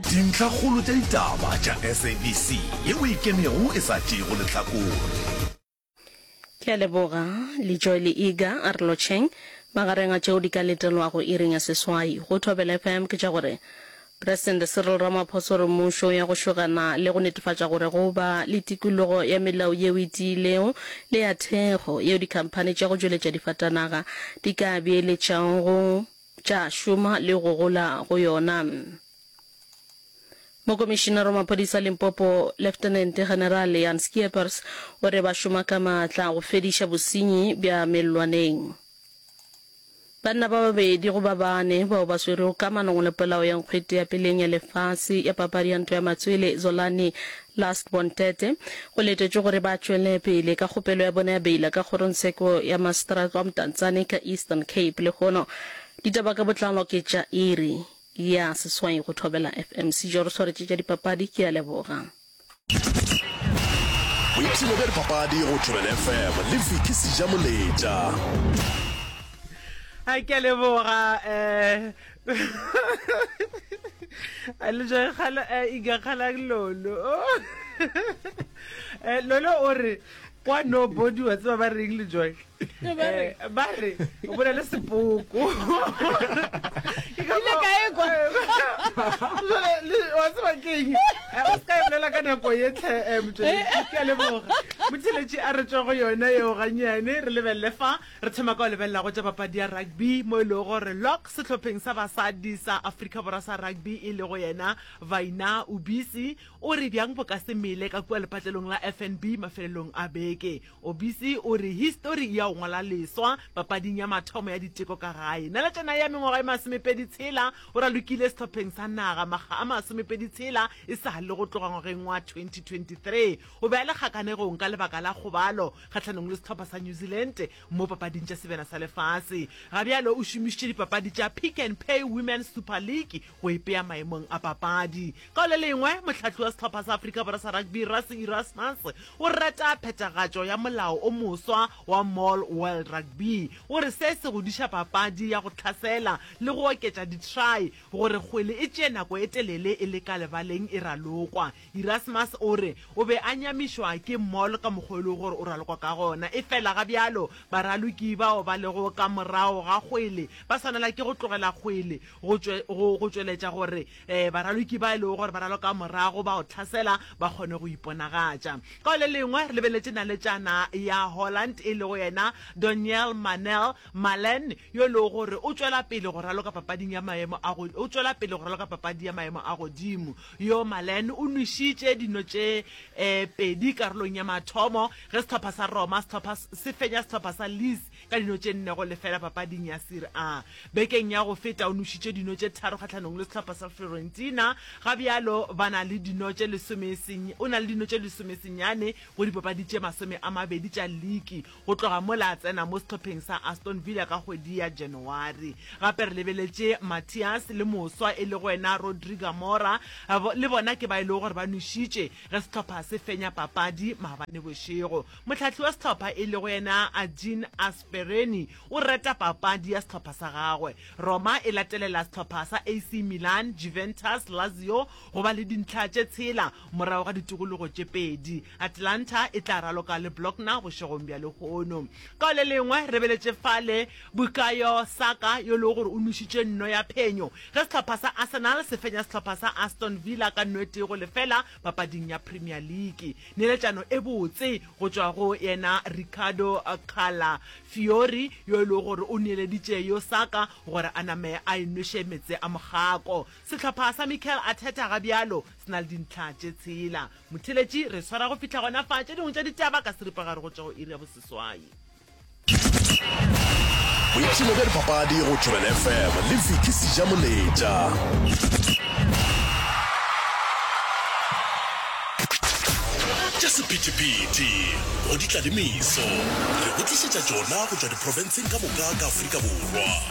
Dintlhakgolo tša ditaba tša SABC yeo e ikemego e sa tšeego lehlakore. Ke a leboga le Joel Iga a re lotšheng. Magareng a tšeo di ka letelwago iring ya seswai go Thobela FM ke tša gore Presidente Cyril Ramaphosa o re mmušo ya go šogana le go netefatša gore go ba le tikologo ya melao yeo e tiilego le ya thekgo yeo dikhamphani tša go tšweletša difatanaga di ka beeletšago tša šoma le go gola go yona. Mokomišinara wa maphodisa Limpopo, Leftenente General Jan Scheepers, o re ba šoma ka maatla go fediša bosenyi bja mellwaneng. Banna ba babedi go ba bane bao ba swerwego ka manong le polao ya nkgwete ya peleng ya lefase ya papadi ya ntwa ya matswele, Zolani Last Bon Tete, go letetšwe gore ba tšwele pele ka kgopelo ya bona ya beila ka kgorongtsheko ya Maseteratse wa Mtantsane ka Eastern Cape lehono. Ditaba ka botlalo ke tša iri ya seswai go Thobela FM. Sijo re swaretše tša dipapadi, ke a leboga. Boipshino bja dipapadi go Thobela FM le Vicky Sija-Moletša. a ke a leboga um a le ja khala a iga khala lolo eh lolo o re kwa no body wa tseba ba reng le joy eh, ba re o bona le sepoko ke ka ile ka ekwa jole le wa tseba keng eh, o ska bolela ka nako ye tlhe eh, motšeletši ke a leboga motšeletši a re tswa go yona yeo ganyane re lebelele fa Re thoma ka go lebelela go tša papadi ya rugby mo e lego gore Lock sehlopheng sa basadi sa Afrika Borwa sa rugby e lego yena Vaina Obisi o re bjang bo ka se mele ka kua lepatlelong la FNB mafelelong a beke. Obisi o re histori e ya go ngwala leswa papading ya mathomo ya diteko ka gae. Naletšana ya mengwaga e masomepedi tshela o ralokile sehlopheng sa naga makga a masomepedi tshela e sa le go tloga ngwageng wa 2023. O be a le kgakanego-ng ka lebaka la kgobalo kgahlanong le sehlopha sa New Zealand mo papading tša sebena sa lefase. Ga bjalo o šomišitše dipapadi tša Pick and Pay Women's Super League go ipea maemong a papadi. Ka le lengwe, mohlahli wa sehlopha sa Afrika Borwa sa rugby Rassie Erasmus o rata phethagatšo ya molao o moswa wa Mall World Rugby. O re se se godiša papadi ya go tlhasela le go oketša di-try gore kgwele e tšee nako e telele e le ka lebaleng e ralokwa. Erasmus o re o be a nyamišwa ke mall ka mokgwa o e lego gore o ralokwa ka gona. Efela ga bjalo, baraloki bao ba lego ka morago ga kgwele ba swanela ke go tlogela kgwele go go go tšweletša gore baraloki ba e lego gore ba raloka morago ba go tlhasela ba kgone go iponagatša. Ka go le lengwe, re lebeletše naletšana ya Holland e lego yena Donyell Mannell Malen yo e lego gore o tšwela pele go raloka papading ya maemo a go o tšwela pele go raloka papadi ya maemo a godimo. Yo Malen o nwešitše dino tše pedi karolong ya mathomo ge sehlopha sa Roma sehlopha se fenya sehlopha sa Leeds ka dino tše nne go lefela papading ya Serie A. Bekeng ya go feta o nwešitše dino tše tharo kgahlanong le sehlopha sa Fiorentina, ga bjalo ba na le dino tše lesome o na le dino tše lesome senyane go dipapadi tše masome a mabedi tša liki. Go tloga mola a tsena mo sehlopheng sa Aston Villa ka kgwedi ya Janawari. Gape re lebeletše Matias le moswa e lego yena Rodri Gamora, le bona ke ba e lego gore ba nwešitše ge sehlopha se fenya papadi maabane bošego. Mohlahli wa sehlopha e lego yena Argin Aspereni o rata papadi ya sehlopha sa gagwe. Roma e latelela sehlopha sa AC Milan, Juventus, Lazio go ba le dintlha tše tshela Morago ga ditikologo tše pedi, Atlanta e tla raloka le Blockner bošegong bja lehono. Ka go le lengwe, re beletše fale Bukayo Saka yo e lego gore o nwešitše nno ya phenyo ge sehlopha sa Arsenal se fenya sehlopha sa Aston Villa ka nno e tee go lefela papading ya Premier League. Neeletšano e botse go tšwa go yena Riccardo Calafiori yo e lego gore o neeleditše yo Saka gore a name a e nweše meetse a mogako. Sehlopha sa Mikel Arteta ga bjalo Se na le dintlha tše tshela. Motheletši, re swara go fihla gona fa tše dingwe tša ditaba ka seripagare go tšwa go iri ya boseswai. Boipshino bja dipapadi go Tšhobelo FM le Vicky Sijamoletša. tša sephethephethe go ditladimiso re go tlišetša tšona go tšwa diprofenseng ka moka ka afrika borwa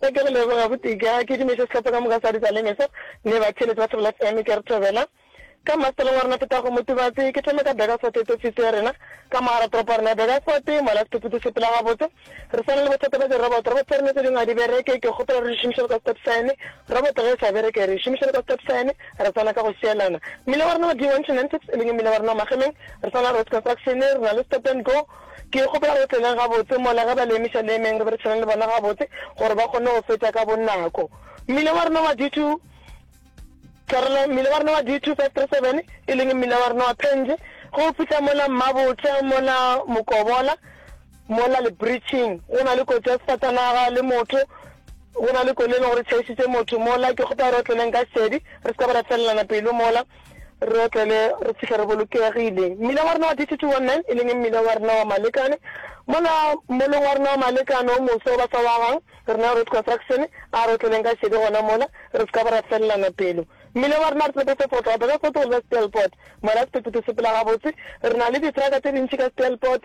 Se ke go leboga gotee ke a kedimetše sehlopha ka moka sa Ditaleme se, le batheeletsi ba Thobela FM. Ke a re thobela. Ka mmasepaleng wa rena Petago Motubatse. Ke thome ka Burgersfort e tsefise ya rena. Ka mogara toropo ya rena ya Burgersfort, mola sephephethu se phela gabotse. Re swana le bothata bja di-robot. Robot tša rena tše dingwe ga di bereke. Ke kgopela re di šomišele ka stop sign. Robot ge e sa bereke, re e šomišele ka stop sign. Re swana ka go šielana. Mmila wa rena wa D1 to Nantips, e leng mmila wa rena wa Magemeng, re swana le Road Construction. Re na le stop and go. Ke kgopela re tseneng gabotse mola ge ba le emešaneemeng re be re tshwane le bona gabotse gore ba kgone go feta ka bonako. Mmila wa rena wa D2, Tshwarelo, mmila wa rena wa D2 537, e leng mmila wa rena wa Penge, ge o fihla mola Mmabotla, mola Mokobola, mola Lebriching, go na le kotsi ya sefatanaga le motho, go na le koloi e leng gore e tšhaišitše motho mola. Ke kgopela re otleleng ka šedi, re se ka ba ra felelana pelo mola. Re otlele re fihle re bolokegile. Mmila wa rena wa D219, e leng mmila wa rena wa Malekane, mola moleng wa rena wa Malekane o moswa o ba sa wagang, rena Road Construction, a re otleleng ka šedi gona mola, re se ka ba ra felelana pelo. Mmila wa rena re tlope se fotlwa, Beresfort go leba Stelpot, mola sephetephete se phela gabotse, re na le ditraka tše dintši ka Stelpot,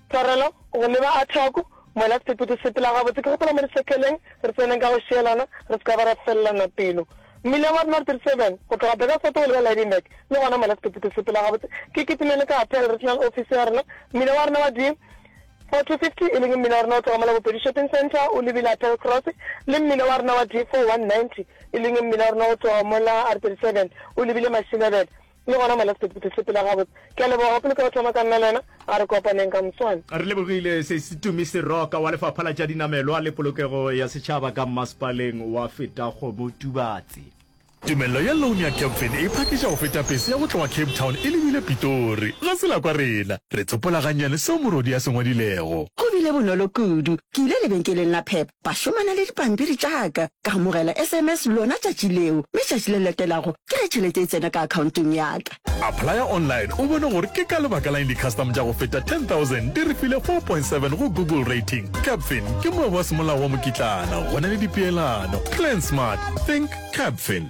Tshwarelo, go leba a thoko, mola sepeto se sepela gabotse. Ke gopola mo re sekeleng re tseneng ka go šielana re se ka ba ra felelana pelo. Mmileng wa North 37, go tloga Burgersfort go leba Lydenburg, le gona mola sepeto se sepela gabotse. Ke kitimele ka Appeal Regional Office ya rena. Mmila wa rena wa di 4250, e leng mmila wa rena o tloga mola Bopedi Shopping Centre o lebile Appeal Cross, le mmila wa rena wa di 4190, e leng mmila wa rena o tloga mola R37 o lebile Mashinebele. Le gona Malex Toti Phuthegile sepela gabotse. Ke a leboga pele ka go thoma ka nna le wena a re kopaneng ka moswane. Re lebogile Sesitumi Seroka wa Lefapha la tša Dinamelwa le Polokego ya Setšhaba ka Mmasepaleng wa Fetaghomo Tubatse. Tumello ya loan ya Capfin e phakiša go feta pese ya go tloga Cape Town e lebile Pitori. Ga se la kwa rena. Re tsopola gannyane seo morwadi a se ngwadilego. Go bile bonolo kudu. Ke ile lebenkeleng la Pep Ba šomana le dipampiri tša ka. Ka amogela sms lona tšatši leo, mme tšatši le latelago ke ge tšhelete e tsena ka akhaontong ya ka. Applya online o bone gore ke ka lebaka la'ng di-custom tša go feta 10,000 di re file 4.7 go Google Rating. Capfin ke moabi wa semolao wa mokitlana, go na le dipeelano. Plan smart, think Capfin.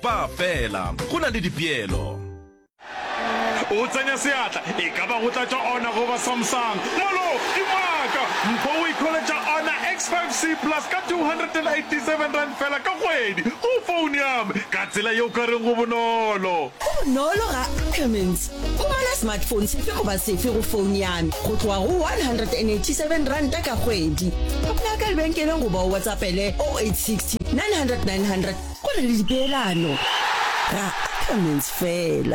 Ba fela. Go na le dipeelo. O tsenya seatla, e ka ba go tlatša ona goba Samsung. Molo! Ke Maaka. Mpho o ikholetša ona X5 C Plus ka R287 fela ka kgwedi, go foune ya me. Ka tsela ye o ka reng go bonolo. Go bonolo ga Ackermans. Go ba na smartphone sefe goba sefe go founo ya me go tloga go R187 ka kgwedi. Kopa ya ka lebenkeleng goba o WhatsAppele 0860 900 900 go na le dipeelano. Ra Ackermans fela.